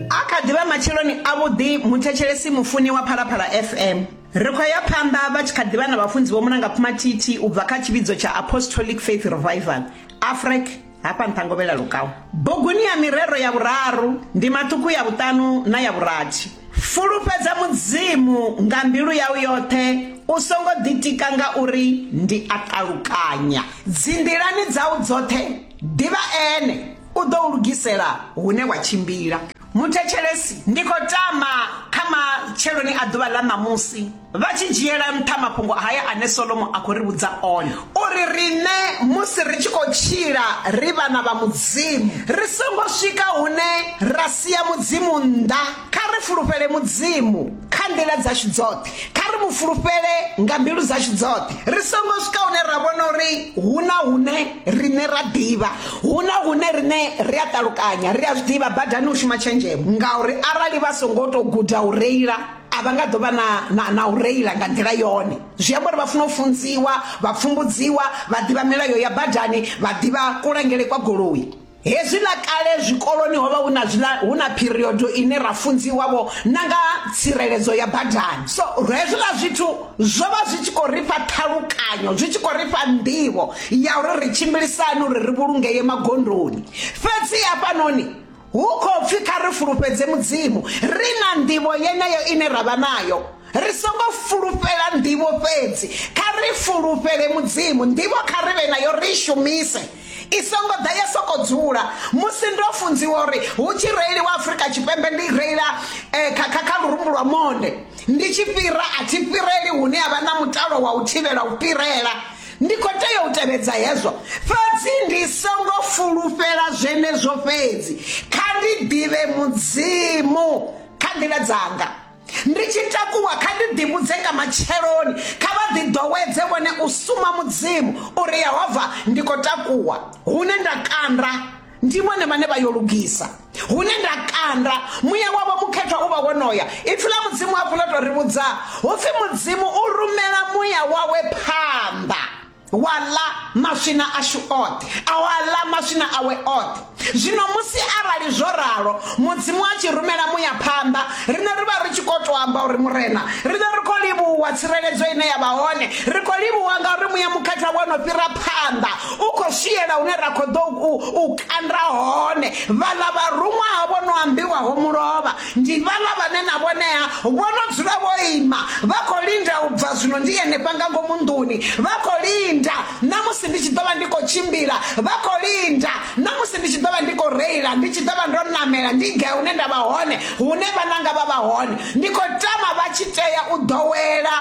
A kha ḓi vha matsheloni avhuḓi muthetshelesi mufuni wa Phalaphala FM. Ri khou ya phanḓa vha tshi kha ḓi vha na vhafunzi Vho Mulanga Phumathithi u bva kha tshivhidzo tsha Apostolic Faith Revival, AFREC, hafha nṱha Ngovhela Lukau. Buguni ya mirero ya vhuraru, ndi maṱuku ya vhuṱanu na ya vhurathi. Fulufhedza Mudzimu nga mbilu yau yoṱhe, u songo ḓitika nga uri ndi a ṱalukanya. Dzinḓilani dzau dzoṱhe, ḓivha Ene. U ḓo u lugisela hune wa tshimbila. Muthetshelesi, Ndi khou tama kha matsheloni a ḓuvha ḽa ṋamusi, vha tshi dzhiela nṱha mafhungo haya ane Solomo a khou ri vhudza one, uri riṋe musi ri tshi khou tshila ri vhana vha Mudzimu, ri songo swika hune ra sia Mudzimu nnḓa, kha ri fulufhele Mudzimu. Kha nḓila dzashu dzoṱhe, kha ri mu fulufhele nga mbilu dzashu dzoṱhe, ri songo swika hune ra vhona uri hu na hune riṋe ra ḓivha, hu na hune riṋe ri a ṱalukanya, ri a zwi ḓivha badani hu shuma tshenzhemo, ngauri arali vha songo tou guda u reila, a vha nga ḓo vha na, na, na u reila nga nḓila yone. Zwi amba uri vha funa u funziwa, vha pfumbudziwa, vha ḓivha milayo ya badani, vha ḓivha kulangele kwa goloi. Hezwi ḽa kale zwikoloni ho vha hu na zwiḽa hu na period ine ra funziwa vho na nga tsireledzo ya badani so hezwiḽa zwithu zwo vha zwi tshi khou ri fha ṱhalukanyo zwi tshi khou ri fha nḓivho ya uri ri tshimbilisani uri ri vhulungeye magondoni fhedzi hafhanoni hu khou pfhi kha ri fulufhedze mudzimu ri na nḓivho yeneyo ine ra vha nayo ri songo fulufhela nḓivho fhedzi kha ri fulufhele mudzimu nḓivho kha ri vhe nayo ri shumise I songo ḓa ya sokou dzula. Musi ndo funziwa uri hu tshi reiliwa Afrika Tshipembe ndi reila eh, kha, kha, kha lurumbu lwa monde ndi tshi fhira a thi fhireli hune ha vha na mutalo wa u thivhela u fhirela ndi khou tea u tevhedza hezwo fhedzi ndi songo fulufhela zwenezwo fhedzi kha ndi ḓivhe mudzimu kha nḓila dzanga Ndi tshi takuwa kha ndi ḓivhudze nga matsheloni kha vha ḓi ḓowedze vhone u suma mudzimu uri yehova ndi khou takuwa hune nda kanda ndi vhone vhane vha yo lugisa hune nda kanda muya wavho mukhethwa u vha wonoya ipfi ḽa mudzimu hafhu ḽo tou ri vhudza hu pfi mudzimu u rumela muya wawe phanḓa wa ḽa maswina ashu oṱhe a wa ḽa maswina awe oṱhe zwino musi arali zwo ralo mudzimu a tshi rumela muya phanḓa riṋe ri vha ri tshi khou tou amba uri murena riṋe ri khou livhuwa tsireledzo ine ya vha hone ri khou livhuwa nga uri muya mukhatha wo no fhira phanḓa u khou swiela hune ra khou ḓo u kanda hone vhaḽa vharuṅwa ha vho no ambiwaho mulovha Ndi vhaḽa vhane na vhonea vho no dzula vho ima, vha khou linda u bva zwino ndi henefha nga ngomu nḓuni, vha khou linda na musi ndi tshi ḓo vha ndi khou tshimbila, vha khou linda na musi ndi tshi ḓo vha ndi khou reila, ndi tshi ḓo vha ndo ṋamela ndi gai hune nda vha hone, hune vhananga vha vha hone. Ndi khou tama vha tshi tea u ḓowela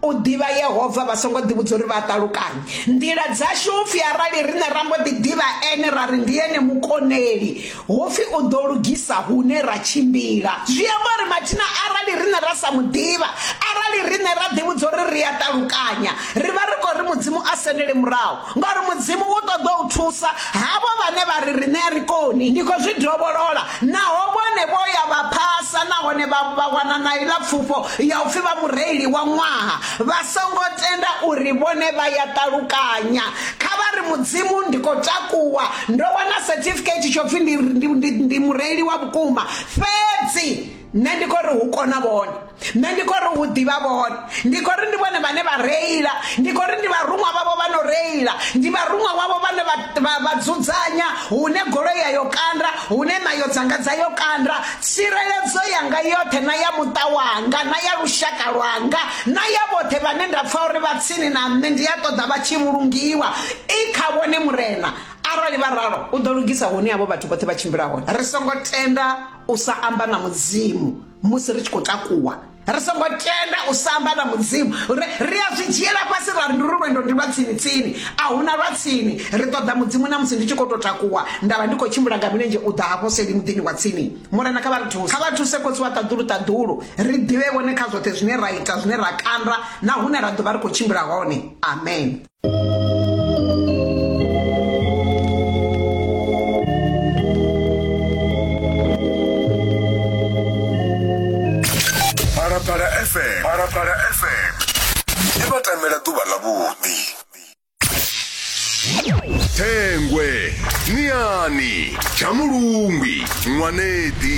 U ḓivha Yehova vha songo ḓivhudza uri vha a ṱalukanya nḓila dzashu hu pfi arali riṋe ra mbo ḓi ḓivha ene ra ri ndi ene mukoneli hu pfi u ḓo lugisa hune ra tshimbila zwi amba uri mathina arali riṋe ra sa mu ḓivha arali riṋe ra ḓivhudza uri ri a ṱalukanya ri vha ri khou ri mudzimu a sendele murahu Ngori Mudzimu u ṱoḓa u thusa havho vhane vha ri riṋe a ri koni, ndi khou zwi dovholola, naho vhone vho ya vha phasa nahone vha vha wana na iḽa pfufho ya u pfi vha mureili wa ṅwaha, vha songo tenda uri vhone vha ya ṱalukanya. Kha vha ri, Mudzimu, ndi khou takuwa, ndo wana certificate tsho pfi ndi, ndi, ndi, ndi mureili wa vhukuma, fhedzi. nṋe ndi khou ri hu kona vhone nṋe ndi khou ri hu ḓivha vhone ndi khou ri ndi vhone vhane vha reila ndi khou ri ndi vharuṅwa vhavho vha no reila ndi vharuṅwa wavho vhane vha dzudzanya hune goloi ya yo kanda hune nayo dzanga dza yo kanda tsireledzo yanga yoṱhe na ya muṱa wanga na ya lushaka lwanga na ya vhoṱhe vhane nda pfha uri vha tsini na nṋe ndi a ṱoḓa vha tshi vhulungiwa i kha vhone murena arali vha ralo u ḓo lugisa hune havho vhathu vhoṱhe vha tshimbila hone ri songo tenda u sa amba na mudzimu musi ri tshi khou takuwa ri songo tenda u sa amba na mudzimu ri a zwi dzhiela fhasi ra ri ndi lwendo ndi lwa tsini tsini a huna lwa tsini ri ṱoḓa mudzimu na musi ndi tshi khou tou takuwa nda vha ndi khou tshimbila nga milenzhe u ḓa hafho seli muḓini wa tsini murena kha vha ri thuse kha vha thuse khotsi wa ṱaḓulu ṱaḓulu ri ḓivhe vhone kha zwoṱhe zwine ra ita zwine ra kanda na hune ra ḓo vha ri khou tshimbila hone amen phalaphala fm phalaphala fm i vha tamela ḓuvha ḽavhuḓi thengwe niani tshamulungwi ṅwanedi